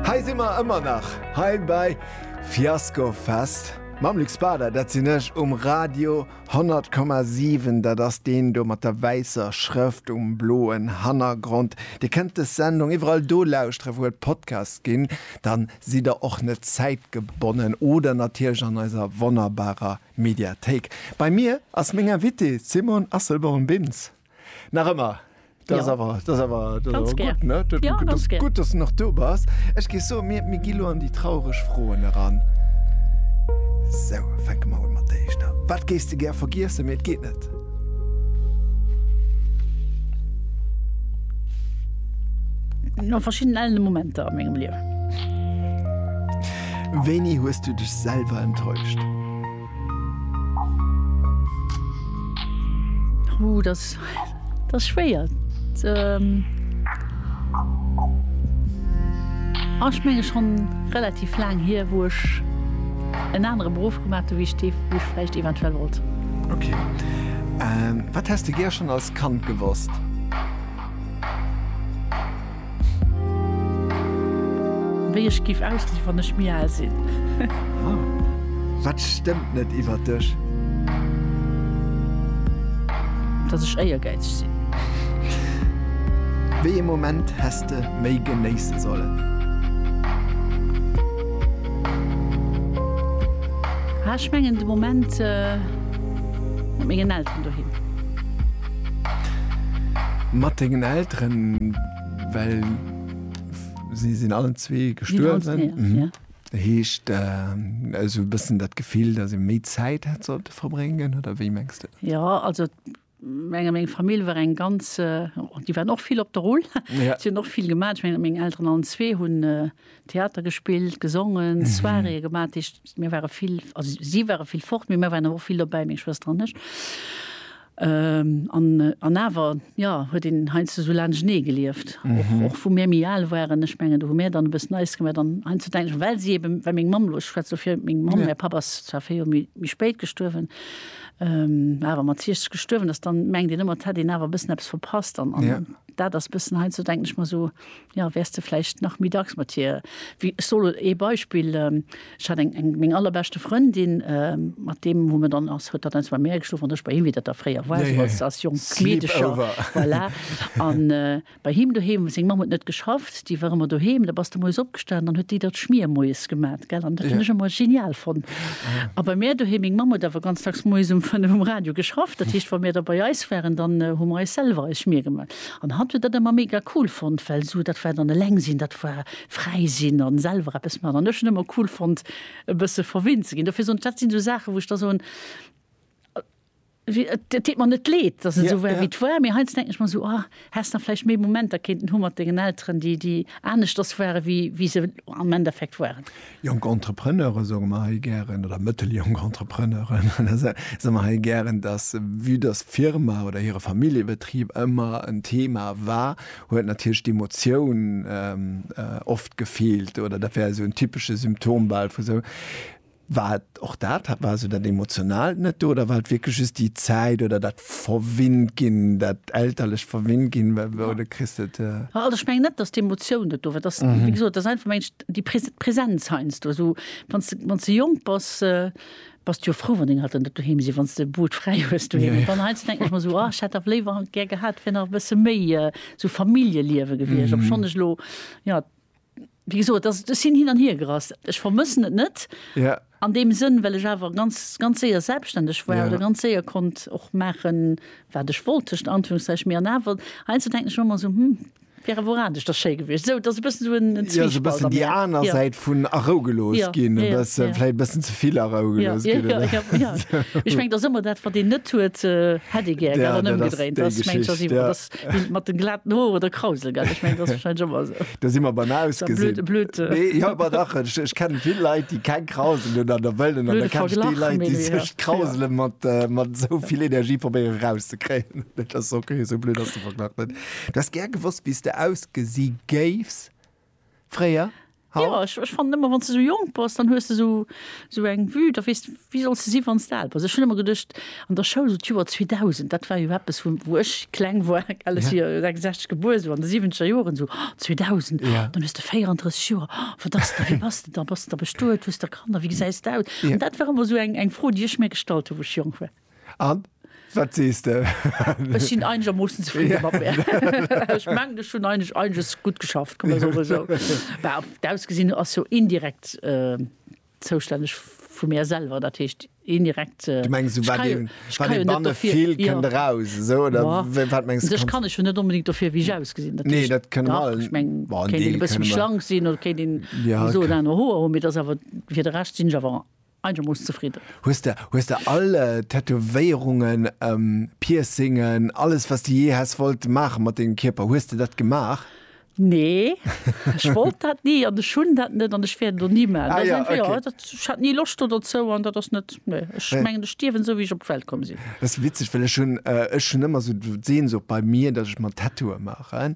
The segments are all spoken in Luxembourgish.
Hei si mer ëmmer nach, hei bei Fiasco Fest mam Luc Spader. Dat sinn ech um Radio 100,7. Dat ass deen do mat der wäisser Schrëft um bloen Hannergrond. Dir kënnt des Sendung iwwerall do lauschteren, wou et Podcasts ginn. Da sidd der och net zäitgebonnen. Oder natierlech an eiser wonnerbarer Mediathéik. Bei mir ass meng Invitée, d'Simone Asselborn-Bintz. Nach ëmmer. Dat ass awer, dat ass awer, dat ass awer gutt, ne? Dat ass gutt, dass du nach do bass. Ech géif soen, mir, mir gi lo an déi traureg Froen eran. Sou, fänke mer un mat der éischter. Wat géifs de gär vergiessen, mee et geet net? No verschiddenen ellene Momenter a mengem Liewen. Wéini hues du dech selwer enttäuscht? Ooh, das, das ist schwer. Ähm, ah, ich meine schon relativ lang hier, wo ich einen anderen Beruf gemacht habe, wie ich, die, wie ich vielleicht eventuell wollte. Okay. Ähm, was hast du gern schon als Kand gewusst? Wéi ech giff ausgesinn wann ech méi aal sinn. Huh, wat stëmmt net iwwert dech? Dass ech éiergäizeg sinn. Wéi ee Moment häss de méi genéisse sollen? Ah, ech mengen de Moment mat mengen Elteren doheem. Mat dengen Elteren, well si sinn allen zwee gestuerwen. Dat heescht, esou e bëssen dat Gefill, datt ee méi Zäit hätt sollte verbréngen, oder wéi mengs de? Jo, also meng Famill war eng ganz, déi waren och vill op der Rull, si hunn och vill gemaach. Ech mengen, meng Elteren allen zwee hunn. Theater gespillt, gesongen, Soiréeë gemaach. Dat heescht, mir ware vill, also si ware vill fort, mee mir waren awer och vill dobäi, meng Schwëster an ech. An, an awer, jo, huet een heiansdo esou laanschtenee gelieft, och, och wou mir méi al waren. Ech mengen, do hu mir dann e bëssen eis gemaach. An heiansdo denken ech, well si eben, well meng Mamm elo, ech schwätze elo fir meng Mamm, mäi Papp ass zwar véier Joer méi, méi spéit gestuerwen, awer mat 60 gestuerwen ass, dann mengt een ëmmer, et hätt een awer e bëssen eppes verpasst. An, an dat ass e bëssen, heiansdo denken ech mer esou, Jo, wäers de vläicht nach méi dacks mat hir. Wéi, ech soll ee Beispill, ech hat eng, eng, meng allerbeschte Frëndin, mat deem hu mer dann, ass, huet hatt eins bei mär geschlof an ech bei him, wéi dat da fréier war, esou als, als jonk Meedecher, voilà. An bei him doheem, seng Mamm huet net geschafft, déi war ëmmer doheem, da bass de moies opgestanen, dann huet déi der d'Schmier moies gemat, gell, an dat hunn ech ëmmer genial fonnt. A bei mär doheem, meng Mamm huet awer ganz dacks moies um fënnef um Radio geschafft, dat heescht, wa mir da bei eis waren, dann hu mer eis selwer eis Schmier gemat. An hatt huet dat ëmmer mega cool fonnt, well esou dat war dann eleng sinn, dat war fräi sinn an selwer eppes maachen. An ech hunn ëmmer cool fonnt e bësse verwinnt ze ginn. Dofir soen ech, dat sinn esou Saachen, wou ech da soen, et deet mer net leed, dass et esou war, wéi et war, mee heiansdo denken ech mer esou, ah, häss nach vläicht méi Momenter kéinten hu mat dengen Elteren, déi aneschters ware wéi se am Endeffekt waren. Jonk Entrepreneure soe mer hei gären, oder mëtteljonk Entrepreneuren, soe mer hei gären, dass, vue dass d'Firma oder hire Familljebetrib ëmmer en Thema war, huet natierlech d'Emotioun oft gefeelt, oder dat wär esou en typesche Symptom bal vu sou, wat Och dat hat, war esou dat Emotionaalt net do oder war et wierklech just déi Zäit oder dat verwinnt ginn, dat elterlecht verwinnt ginn, wou de kriss et. Also ech mengen net, datt d'Emotioun net do war, et ass, wéi gesot, et ass einfach, meng ech, déi Presenz heiansdo, esou wann s de, wann s de jonk bass, bass de jo frou, wann deng Elteren net doheem sinn, wann s de Boot fräi hues doheem. Mä dann heiansdo denken ech mer esou, ah, ech hätt dach léiwer gär gehat, et wär nach e bësse méi esou Familljeliewe gewiescht, obschonn ech elo, jo. Wéi gesot, dass, ech sinn hin an hier gerast. Ech vermëssen et net. Ja. An deem Sënn, well ech awer ganz, ganz séier selbstständeg war oder ganz séier konnt och maachen, wat ech wollt, tëschent Anführungszeichen. Mee an awer, heiansdo denken ech manner esou, Hm, wär awer och anescht, dass schéi gewiescht. Esou, et ass e bëssen esou en Zwiespalt an mir. Jo, esou e bëssen déi aner Säit vun a Rou gelooss ginn. E bëssen, vläicht e bëssen ze vill a Rou gelooss ginn, oder? Jo, jo, jo. Ech mengen, et ass ëmmer dat, wat een net huet, hätt ee gär, gell? An ëmgedréint, dass, mengen ech, ass iwwer. Bild mat den glaten Hoer oder Krausel gell ech meng dat ass wahrscheinlech ëmmer esou. Da si mer beim Ausgesinn. Blöd, blöd. Nee, jo, awer dach, ech, ech kennen vill Leit déi keng Krausel hunn an der wëllen an da kenn ech déi Leit déi sech d'Krausele ja. mat, mat esou vill Energie probéieren eraus ze kréien. Dat ass ok, esou blöd ass de Verglach net. Du häss gär gewosst wéi s de ausgesi géifs. Fréier? Haut? Jo, ech fannen ëmmer, wann s de esou jonk bass, dann hues de esou esou eng Vue, da weess de, wie solls de si wann s de al bass. Ech hunn ëmmer geduecht an der Schoul, esou d'Joer 2000, dat war jo eppes, wou wou ech kleng war, well ech si jo 66 gebuer, esou an de siwwenzeger Joren, esou, oh 2000, oh dann hues de 34 Joer, oh wat ass da, wéi bass de da, bass de da bestuet, hues da Kanner, wéi gesäis de aus? An dat war ëmmer esou eng eng Fro, déi ech mir gestallt hu wou ech jonk war. An? Wat sees de? Ech sinn einegermoossen zefridde mat mär. Ech mengen, ech hunn einig, einiges gutt geschafft, kann man soen, esou. Bah, d'Ausgesinn ass jo indirekt zoustänneg vu mär selwer, dat heescht, indirekt, ech kann jo net dofir. Du mengs, esou wat ee, wat ee banne fillt, kënnt eraus, esou, oder wat mengs du? Sech kann ech jo net onbedéngt dofir, wéi ech ausgesinn, dat heescht. Nee, dat kënne mer all. Ech meng, kéint een e bësse méi schlank sinn oder kéint een esou oder aner Hoer hunn, mee et ass awer, fir de Rescht sinn ech awer Eigermooss zefridden. Hues de hues de all Tätowéierungen, Piercingen, alles wat s de jee häss wollt maache mat dengem Kierper, hues de dat gemaach? Nee, ech wollt dat ni an ech hunn dat net an ech wäert et och ni maachen. Dat ass einfach, jo, dat, ech hat ni Loscht do dozou an dat ass net, nee. Ech mengen, ech stierwen esou, wéi ech op d'Welt komm sinn. Dat ass witzeg, well ech hunn, ech hunn ëmmer esou d'Sehnsucht bei mir, datt ech mer Tattooe maachen.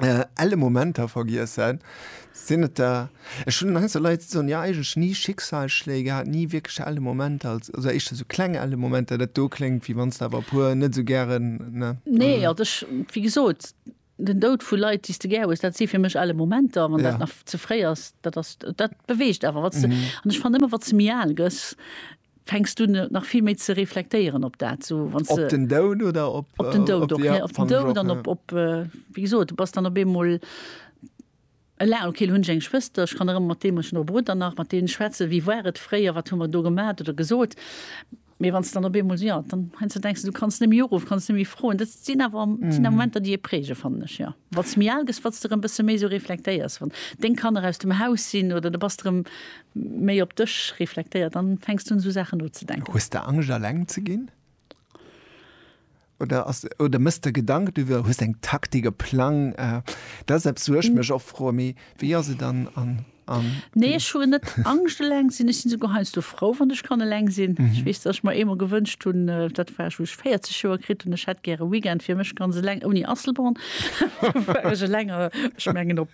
elle Momenter vergiessen, sinn et der, ech hunn Angst, dass Leit da soen, jo eigentlech ni Schicksalsschléi gehat, ni wierklech elle Momenter, also éischter sou kleng elle Momenter, dat do kléngt, wéi wann s de awer e puer net esou gären, ne? Nee, also ech, wéi gesot, den Doud vu Leit, déi s de gär hues, dat si fir mech elle Momenter. Wann dat nach ze fréi ass, dat ass, dat beweegt awer, wa s de, an ech fannen ëmmer, wa s de méi al gëss, Fänks du nach vill méi ze reflektéieren op dat, sou wann se. Op den Doud oder op. Op den Doud och, ja. Op den Doud an op, op, wéi gesot, du bass dann op eemol eleng. Okay, lo hunn ech eng Schwëster, ech kann erëm mat deem, ech hunn och e Brudder nach, mat deene schwätzen, wéi war et fréier, wat hu mer do gemat oder gesot. Mee wann s de dann op eemol, ja, dann heiansdo denks de, du kanns net méi uruffen, kanns net méi froen. Dat sinn awer, sinn awer Momenter, déi ee prägen, fannen ech, jo. Wat s méi al gëss, wat s de erëm e bësse méi esou reflektéiers, wann deng Kanner aus dem Haus sinn oder du bass erëm Méi op dech reflektéiert, dann fänks du un sou Saachen nozedenken. Hues de Angscht alleng ze ginn? Oder ass, oder mëss de Gedanken driwwer, hues eng Taktik, e Plang? Dat ass eppes wou ech mech oft froen, mee wéi ass et an, an, an. Nee ech hu net Angscht eleng ze sinn, ech sinn esouguer heiansdo frou wann ech kann eleng sinn. Ech weess dass ech mer eemol gewënscht hunn, dat war ech wou ech 40 Joer kritt hunn, ech hätt gär e Weekend fir mech ganz eleng ouni Asselborn, wou war ech eleng, ech mengen op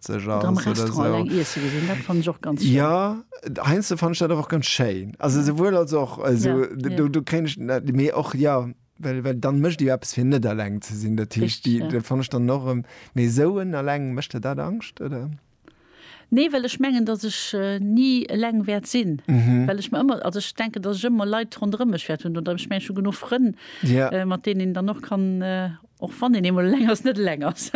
sech aus oder am Restaurant eng iesse gesinn, dat fannen ech och ganz schéin. Jo, heiansdo fannen ech dat awer och ganz schéin. Also souwuel als och, also do do kréien ech net mee och jo, well well dann mécht ee jo eppes fir net eleng ze sinn. Dat heescht déi dat fannen ech dann och erëm, mee esou en eleng, mécht der dat Angscht oder? Nee, well ech mengen, datt ech ni eleng wäert sinn, well ech mer ëmmer, also ech denken, datt ech ëmmer Leit ronderëm mech wäert hunn oder ech mengen ech hu genuch Frënn, mat deenen een dann och kann, och wann een eemol eleng ass, net eleng ass.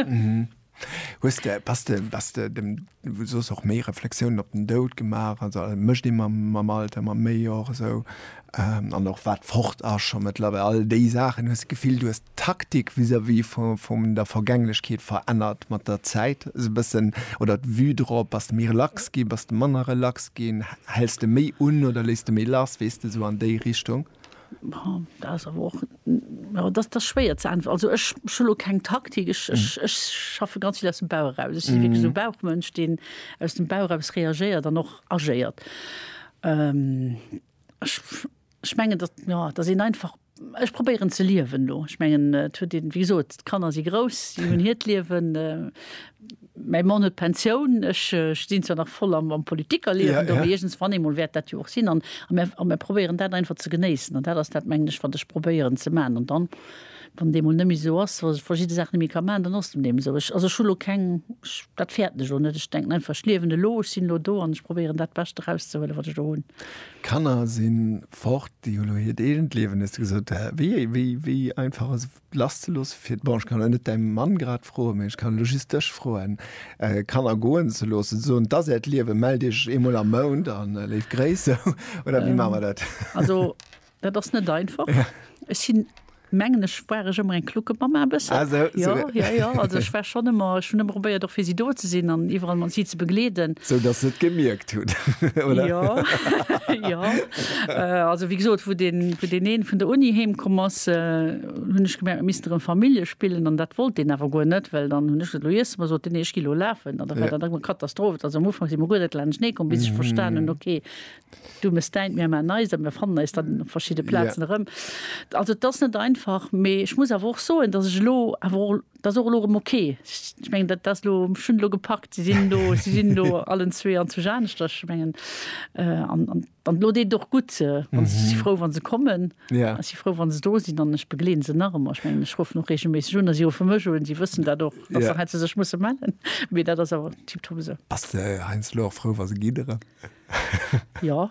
Hues de, bass de, bass de dem, wou soss och méi Reflexiounen op den Doud gemaach, also a mécht ee mam, mam Alter, mam méi och esou, an och wat fort ass scho méttlerweil, all déi Saachen, hues de d'Gefill, du hues d'Taktik vis-à-vis vu, vum der Vergänglechkeet verännert mat der Zäit esou bëssen, oder d'Vue drop, bass de méi relax ginn, bass de manner relax ginn, häls de méi un oder léiss de méi lass, weess de, esou an déi Richtung? schwéier ze äntweren. Also ech hun lo keng Taktik. Ech schaffe ganz vill aus dem Bauch eraus. Ech si wierklech esou e Bauchmënsch, deen aus dem Bauch eraus reagéiert an och agéiert. Ech mengen, datt, jo, datt een einfach, ech probéieren ze liewen elo. Ech mengen, et huet ee, wéi gesot, d'Kanner si grouss, si hunn hiert Liewen. Mäi Mann huet Pensioun, ech stinn zwar nach voll am Politikerliewen do, mee iergens wann eemol wäert dat jo och sinn. An mir probéieren dat einfach ze genéissen. An dat ass dat, mengen ech, wat ech probéieren ze maachen. An dann, wann et eemol net méi esou ass, dass ech verschidde Saache net méi ka maachen, dann ass dat eeben esou. Ech, also ech hu elo keng, dat fäerten ech elo net. Ech denken einfach, ech liewen elo, ech sinn elo do an ech probéieren dat Bescht erauszehuelen, wat ech do hunn. D'Kanner si fort, déi hu elo hiert eegent Liewen, hues de gesot. Wéi einfach ass lasszeloossen, fir bon, ech kann elo net däi Mann grad froen, mä ech kann elo just dech froen, Kanner goen ze loossen, ze soen, 't ass äert Liewen, mellt iech eemol am Mount a léif Gréiss, sou, oder wéi maache mer dat? Also, dat ass net einfach. Ech sinn, mengen ech, war ech ëmmer eng Kluckemamma e bëssen. Ah sou, sou. Jo, jo, jo, also ech war schonn ëmmer, ech hunn ëmmer probéiert och fir si do ze sinn an iwwerall mat si ze begleeden. Sou, dass se et gemierkt. Jo, jo. Also wéi gesot, wou deen, wou deen een vun der Uni heem komm ass, hunn ech gemerkt, mir missten erëm Famille spillen an dat wollt deen awer guer net, well dann hunn ech gesot, elo iessen mer, sot deen, nee, ech gi elo lafen an da war dat eng Katastroph. Also am Ufank si mer guer net laanschtenee komm, bis ech verstan hunn, okay, du mes däint, mir man eist a mir fannen eis dann op verschidde Plazen erëm. Also et ass net einfach, mee ech muss awer och soen, dass ech elo awer och, Dat ass och elo erëm ok. Ech mengen, dat ass elo, ech hunn et elo gepackt, si sinn elo, si sinn elo allen zwee an zu Janeschterch. Ech mengen, an, an, an elo deet et och gutt, wann se, ech si frou, wa se kommen. Ech si frou, wa se do sinn an ech begleeden se nach ëmmer. Ech mengen, ech ruffen och reegelméisseg un a si ruffe mech un. Si wëssen dat och, dass se hei zu sech musse mellen. Mee dat ass awer tiptop esou. Bass de heiansdo och frou, wa se gidderen? Jo,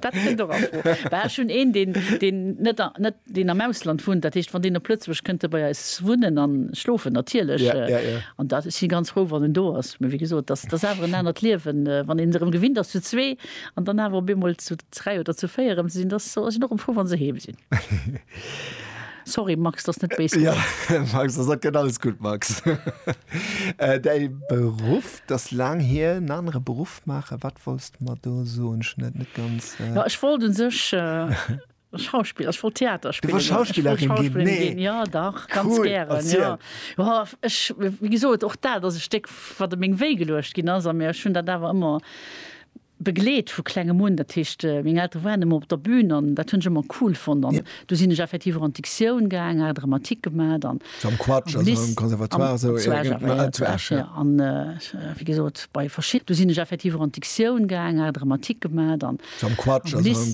dat kënnt och a Fro. Well ech hunn een, deen, deen net, net, deen am Ausland wunnt, dat heescht, wann deen op Lëtzebuerg kënnt e bei eis wunnen an schlofen, natierlech. Ja, ja, ja. An da si ganz frou, wann en do ass. Mee wéi gesot, dat, dat ass awer en anert Liewen, wann een erëm gewinnt ass, zu zwee an dann awer op eemol zu dräi oder zu véier erëm ze sinn. Da sinn och erëm frou, wa se heem sinn. Sorry, Max, dat ass net béis gemengt. Jo, Max, dat ass, dat gëtt alles gutt, Max. Däi Beruff? D'ass laang hier, en anere Beruff maachen. Wat wolls de mer do soen? Ech hunn dat net ganz. Jo, ech wollt u sech Schauspiller, ech wollt Theater spillen. Du wolls Schauspillerin ginn? Nee. Ech wollt Schauspillerin ginn, jo dach, ganz gären. Cool, erziel. Jo, ech, wéi gesot, och dat ass e Stéck, wat op meng Wéi geluecht ginn ass. A mee ech hunn dat awer ëmmer. begleet vu klengem un, dat heescht meng Eltere waren ëmmer op der Bühn an dat hunn ech ëmmer cool fonnt an du sinn ech effektiv och an d'Dictioun gaang, Art dramatique gemat an am Lycée, am Conservatoire zu Esch, ja zu Esch jo an wéi gesot bei verschid du sinn ech effektiv och an d'Dictioun gaang, Art dramatique gemat an am Lycée.